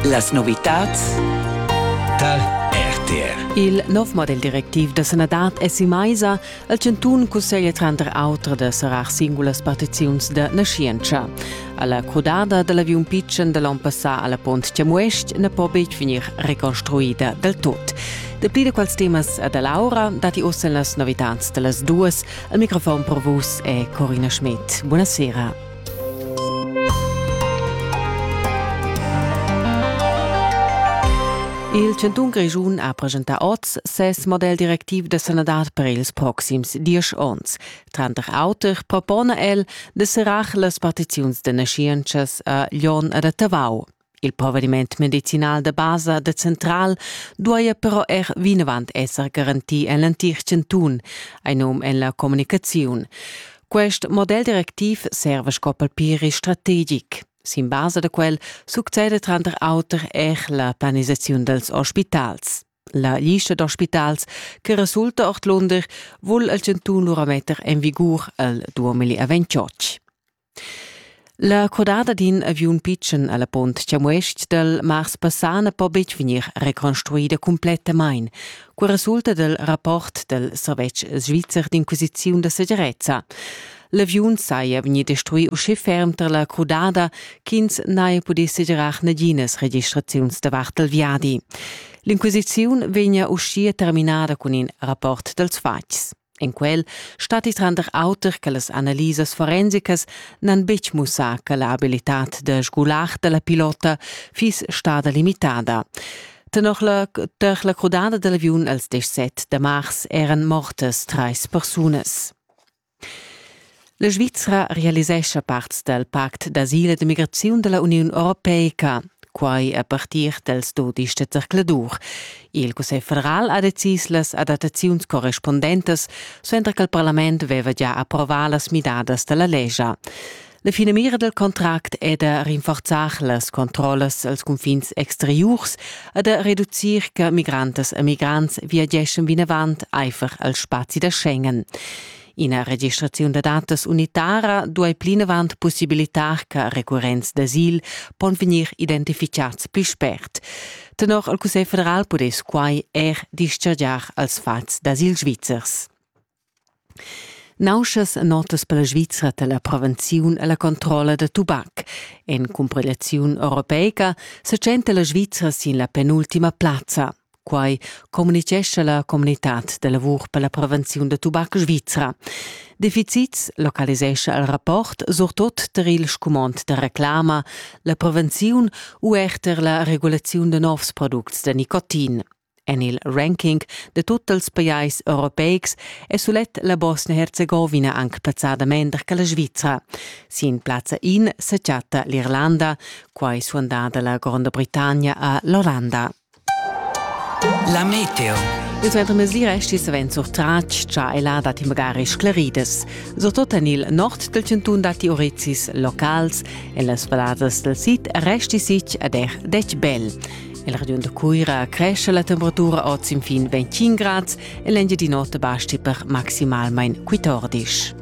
Las novitads dal RTR. Il nov model directiv da sanadad è si maisa al chantun cusseglia tranter auter da serrar singulas partiziuns da naschientscha. Alla crudada da l'aviun pitschen da l'on passà a la Pont Chamuest na po betg vegnir reconstruida del tot. Dapli da quals temas a da Laura datti ossa las novitads da las duas Il microfon per vus è Corina Schmidt. Buonasera. Il Cantun Grischun ha presentà oz ses model directiv da sanadad per ils proxims diesch onns. Tranter auter propona el de serrar las partiziuns de naschientschas a Glion ed a Tavau. Il provediment medicinal da basa da central duaja però er vinavant esser garantì en l'entir chantun, ein num en la communicaziun. Quest model directiv serva sco palpiri strategic. Sin basa da quel succede tranter auter er la planisaziun dals ospitals. La lista d'ospitals che resulta ordlunder vul il chantun lura metter en vigur el 2028. La codada d'in aviun pitschen a la Punt Chamues-ch dal mars passà na po betg vegnir reconstruida cumplettamain. Quai resulta dal rapport dal servetsch svizzer d'inquisiziun da segirezza. L'aviun saja vegnì destruì uschè ferm tar la crudada ch'ins n'haja pudì segirar naginas registraziuns davart dal viadi. L'inquisiziun vegnia uschia terminada cun in rapport dals fatgs. En quel statti tranter auter che las analisas forensicas n'han betg mussà che la abilitad da sgular dalla pilota fiss stada limitada. Tenor la, tar la crudada dall'aviun als 17 da mars eran mortas trais persunas. La Svizra realisescha parts dal pact d'asil e d'immigraziun da la Uniun Europeica. Quai a partir dals dodisch da zercladur. Il Cussegl federal ha decis las adattaziuns correspundentas, suenter ch'il parlament aveva già approvà las midadas da la lescha. La finamira dal contract è da rinforzar las controllas als cunfins exteriurs e da reducir che migrantas e migrants viageschan vinavant aifer al spazi da Schengen. Ina registraziun da datas unitara duai plinavant pussibilitar che recurrents d'asil pon vegnir identificads pli spert. Tenor il Cussegl federal pudess quai er dischargiar als fatgs d'asil svizzers. Nauschas notas per la Svizra da la prevenziun e la controlla da tubac. En cumpilaziun europeica sa tschenta la Svizra sin la penultima plazza. Quai communitgescha la communitad da lavur per la prevenziun da tubac svizra. Defizits localisescha il rapport surtut tar il scumond da reclama, la prevenziun u er tar la regulaziun da novs products da nicotin. En il ranking da tut els pajais europeics è sulet la Bosnia-Herzegovina anc plazzada mender che la Svizra. Sin plazza in sa chatta l'Irlanda, quai suandada la Gronda Britannia a l'Olanda. La meteo. Il suenter mesira è stì savens surtratg, cha ella dat magari scleridas. Surtot en il nord del cantun datti orezis locals, en las valladas del sid resti sich ad er dec bel. En regiun de Cuira cresce la temperatura oz infin 25 grads e l'engiadin'ota basti per maximalmain 14.